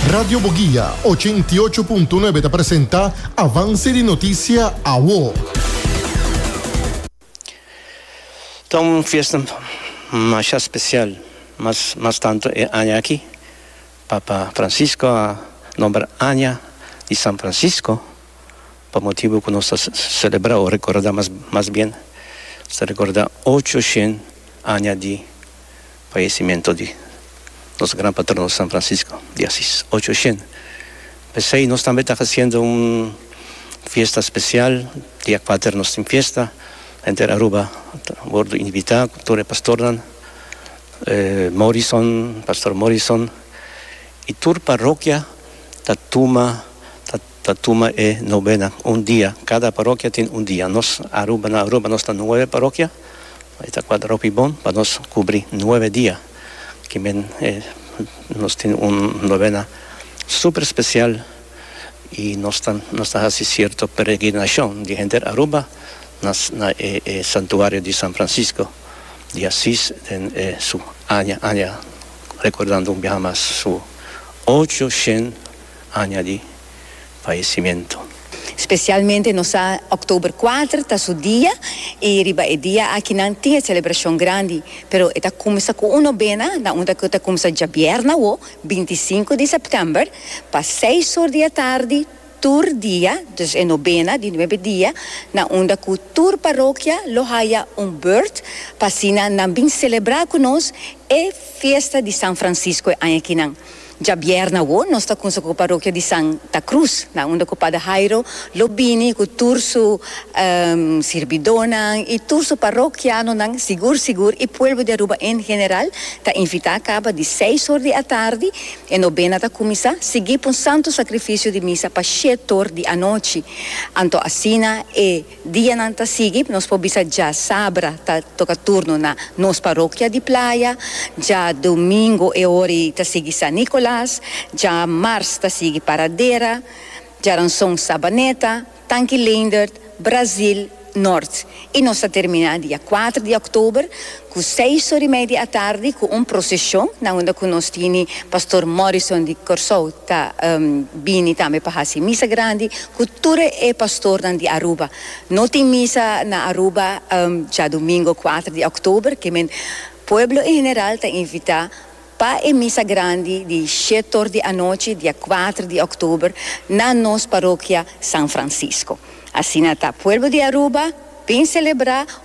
Radio Boguia, ochenta i ocho punto nuebe ta presenta Avance di Noticia Awo. Ta un fiesta masha special mas mas tanto e aña aki. Papa Francisco a nomber Aña di San Francisco pa motibu cu nos ta celebra o recorda mas mas bien nos ta recorda ocho shen aña di. Fallecimento di nos gran patrono San Francisco di Asis ocho ocien, pesey nos tambe ta haciendo un fiesta special, dia cuater nos tin fiesta, henter Aruba ta wordo invita cu tur e pastornan, Morrison, Pastor Morrison y tur parrokia ta tuma. Ta tuma e novena un dia. Kada parokia tin un dia. Nos Aruba, na Aruba nos ta nuebe parokia. E ta kual hopi bon pa nos kubri nuebe dia ki men e nos tin un novena super spesial i nos ta nos ta hasi sierto peregrinashon di henter Aruba na na e e santuario di San Francisco di Asis den e su aña aña rekordando un biaha mas su ocho shen Aña di faesimento. Specialmente nos sa October kuater ta su dia y riba e dia aki nan tin e celebracion grandi pero e ta cuminsa cu un nobena na un cu ta cuminsa djabièrnè awo binti i sinku di September pa seis or di atardi tur dia dus e nobena di nuebe dia na unda cu tur parokia lo haya un beurt pa asina nan bin celebra cu nos e fiesta di San Francisco e aña ki nan Djabièrnè awo nos ta kunsa ku parokia di San ta Krus nan unda ku Pader Hairo lo bini ku tur su sirbidónan i tur su parokianonan sigur sigur i pueblo di Aruba en general ta invitá kaba di seis or di atardi e nobena ta kuminsá sigui pa un santu sakrifisio di misa pa shét or di anochi anto asina e Dianan ta sigui, nos por bisa dja sabra ta toca turno na nos parokia di Playa, dja domingo e ora ei ta sigui San Nicolas, dja mars ta sigui Paradera, djaranson Sabaneta, Tanki Leendert, Brazil, Noord y nos ta termina dia kuater di oktober Ku seis or i media atardi ku un proseshon na unda ku nos tini Pastor Morrison di Kòrsou ta bini tambe pa hasi misa grandi ku tur e pastornan di Aruba. No tin misa na Aruba djadumingo kuater di òktober, ke men pueblo en general ta invitá pa e misa grandi di shet or di anochi dia kuater di òktober na nos parokia San Francisco. Asina ta pueblo di Aruba bin selebrá.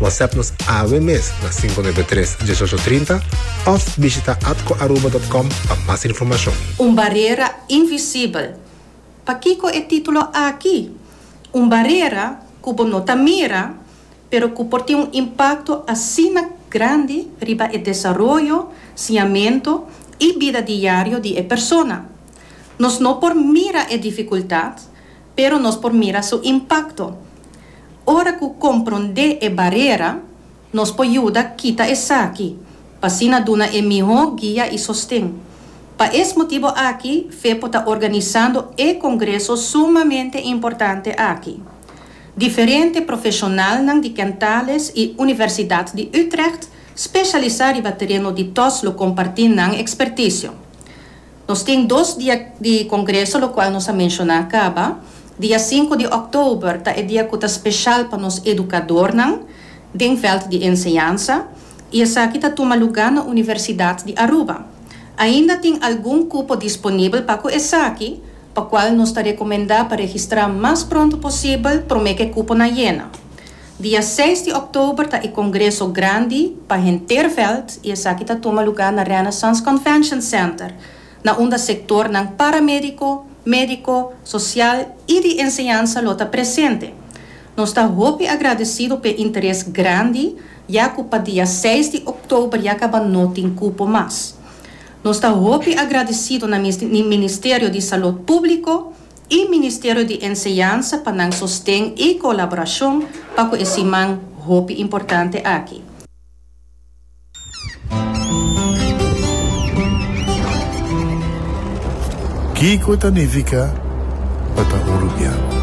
WhatsApp nos awe mes na 593 1830 of bishita atcoaruba.com pa mas informacion. Un barera invisibel. Pakico e titulo aki? Un barera cu bo no ta mira, pero cu por tin un impacto asina grandi riba e desaroyo, siñamento y bida diario di e persona. Nos no por mira e dificultad, Pero nos por mira su impakto. Ora ku komprondé e barera, nos por yuda kita esaki, pa asina duna e mihó guia i sosten. Pa es motibu aki fe por ta organisando e kongreso sumamente importante aki. Diferente profeshonalnan di Kentales i Universidat di Utrecht speshalisá riba tereno di tos lo kompartí nan ekspertisio. Nos tin dos dia di congreso locual nos a menciona caba. Dia sinku di oktober ta e dia cu ta special pa nos educadornan den veld di enseñansa y esaki ta tuma luga na Universidad di Aruba. Ainda tin algun cupo disponibel pa cu esaki, pa cual nos ta recomenda pa registra mas pronto posibel prome cu e cuponan yena. Dia seis di òktober ta e kongreso grandi pa henter vèlt i esaki ta tuma lugá na Renaissance Convention Center, na unda sektornan paramédiko, médiko, sosial i di enseñansa lo ta presente. Nos ta hopi agradesido p'e interes grandi ya ku pa dia seis di òktober ya kaba no tin kupo mas. Nos ta hopi agradesido na Ministerio di Salud Públiko, y Ministerio di Enseñansa pa nan sosten y colaboracion pa cu e siman hopi importante aki. Kico ta nifica pa ta uruguiano?